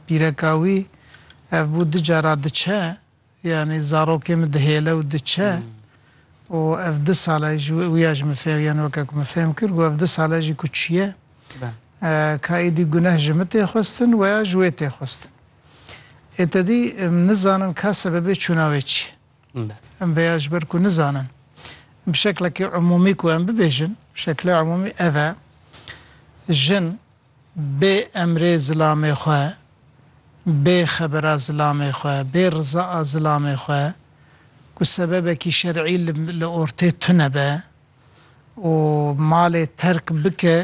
Pîreka wî ev bû du cara diçe, yanî zarokê min dihêle û diçe û ev du sal e ji wê wî ya ji min fêh yanî weke ku min fêhm kir got ev du sal e jî ku çiye ka êdî guneh ji min tê xwestin weya ji wê tê xwestin. Ê te dî em nizanin ka sebebê çûna wê çi ye. Em vê ya ji ber ku nizanin bi şeklekî umûmî ku em bibêjin bi şekilê umûmî ev e jin Bê emrê zilamê xwe, bê xebera zilamê xwe, bê riza a zilamê xwe ku sebebekî şer'î li ortê tune be û malê terk bike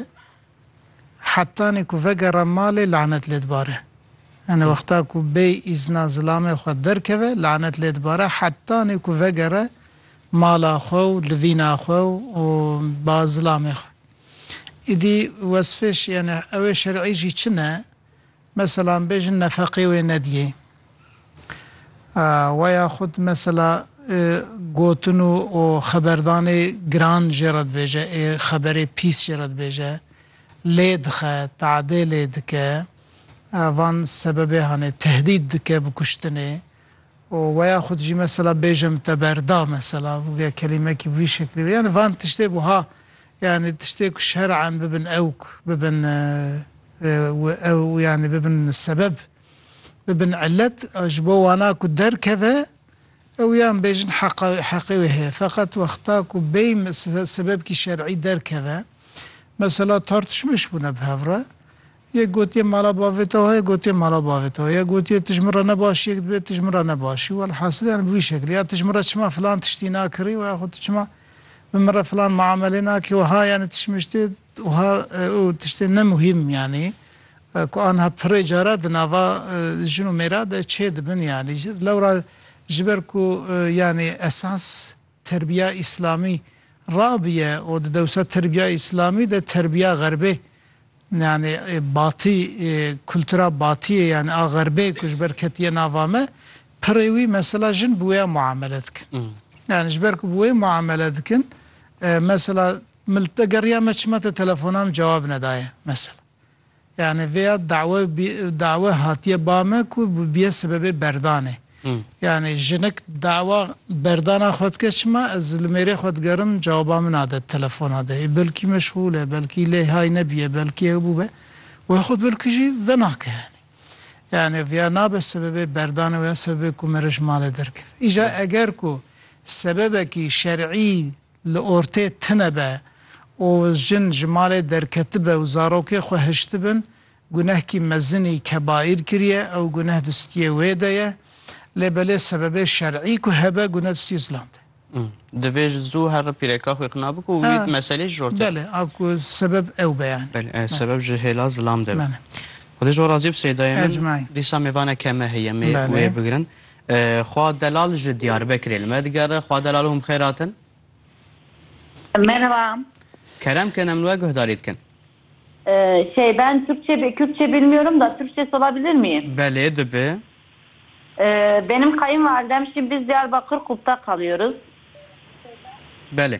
hetanî ku vegera malê lanet lê dibare. Yanî wexta ku bê îzna zilamê xwe derkeve lanet lê dibare hetanî ku vegere mala xwe û livîna xwe û ba zilamê xwe. Îdî wesfê şiyane ewê şer'î jî çi ne? Meselan bêjin nefeqê wê nediyê. Wa ya xud mesela gotin û û xeberdanê giran jê re dibêje ê xeberê pîs jê re dibêje, lê dixe, teadê lê dike, van sebebê hanê, tehdîd dike bi kuştinê. û weya xwe dijî mesela bêjim te berda mesela bûge kelîmekî bi vî şeklî be yanî van tiştê bû ha yanî tiştê ku şer'an bibin ewk bibin ew yanî bibin sebeb bibin ilet ji bo wana ku derkeve ew yan bêjin heqa heqê wê heye feqet wexta ku bêy sebebkî şer'î derkeve mesela tartişmeş bûne bi hev re Yek gotiye mala bavê te wa ye, gotiye mala bavê te wa ye, gotiye tu ji min re ne baş yek dibe, tu ji min re ne başî û elhasil yanî bi vî şeklê ya tu ji min re çima filan tiştî nakirî û axû tu çima bi min re filan miamelê nakî wiha yanî tişmiştê wiha û tiştên ne muhîm yanî ku aniha pirê cara di nava jin û mêra de çêdibin yanî lewra ji ber ku yanî esas Terbiya Îslamî rabiye û di dewsa terbiya Îslamî de terbiya Xerbê yanî batî kultura batiyê yanî a Xerbê ku ji ber ketiye nava me pirê wî mesela jin bi wêya muamele dikin. Yanî ji ber ku bi wê muamele dikin mesela min li te geriya me çima te telefona min cewab nedaye mesela. Yanî vê ya dawe dawe hatiye ba me ku bibiye sibebê berdanê. Yanî jinik dawa berdana xwe dike çima ez li mêrê xwe digerim cewaba min a de telefona de ê belkî meşxûl e belkî lê hay nebiye belkî ew bûbe wê xwe bil kijî venake yanî. Yanî vê ya nabe sibebê berdanê wê ya sibebê ku mere ji malê derkeve. Îja eger ku sebebekî şerî Li ortê tine be û jin ji malê derketibe û zarokê xwe hiştibin, gunehkî mezinî, kebaîr, kiriye, ew guneh di stiyê wê de ye. Lê belê sebebê şer'î ku hebe, guneh di stiyê Îslam de ye. Divê ji zû herre pîreka xwe qina bike û wî di meselê ji ortê. Belê, a ku sebeb ew be yanî. Belê, ev sebeb ji hêla zilam de be. Xwedê ji we razî be Sêdayê min, dîsa mêvane keme heye, mêr wê bigirin. Xwa Delal ji Diyarbekirê li me digere. Xwa Delal hûn bi xêr hatin. Merhaba. Kerem kin em li we guhdarî dikin. Şey ben Türkçe bi Kürtçe bilmiyorum da Türkçesi olabilir mi? Belê dibi. Benim kayınvalidem şimdi biz Diyarbakır Kup'ta kalıyoruz. Belê.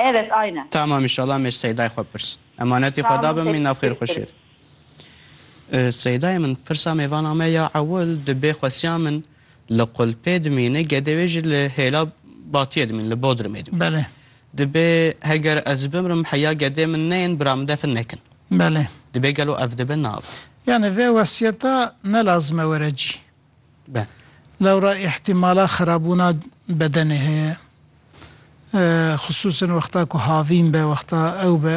Evet aynen. Tamam inşallah mê Seydayê xwe pirs. Emanetî xwe da bi min nav xêr xweşî. Seydayê min pirsa mêvana me ya ewil di bê xwesiya min li Qulpê dimîne gedê wê jî li hêla Batiyê dimîn li Bodrumê dimîn. Belê. Di bê heger ez bimrim heya gedê min neyên bira min defin nekin. Belê. Di bê gelo ev dibe nab. Yanî vê wesiyeta ne lazim e were cî. be. Lewra îhtîmala xerabûna bedenê heye. Xisûsen wexta ku havîn be, wexta ew be.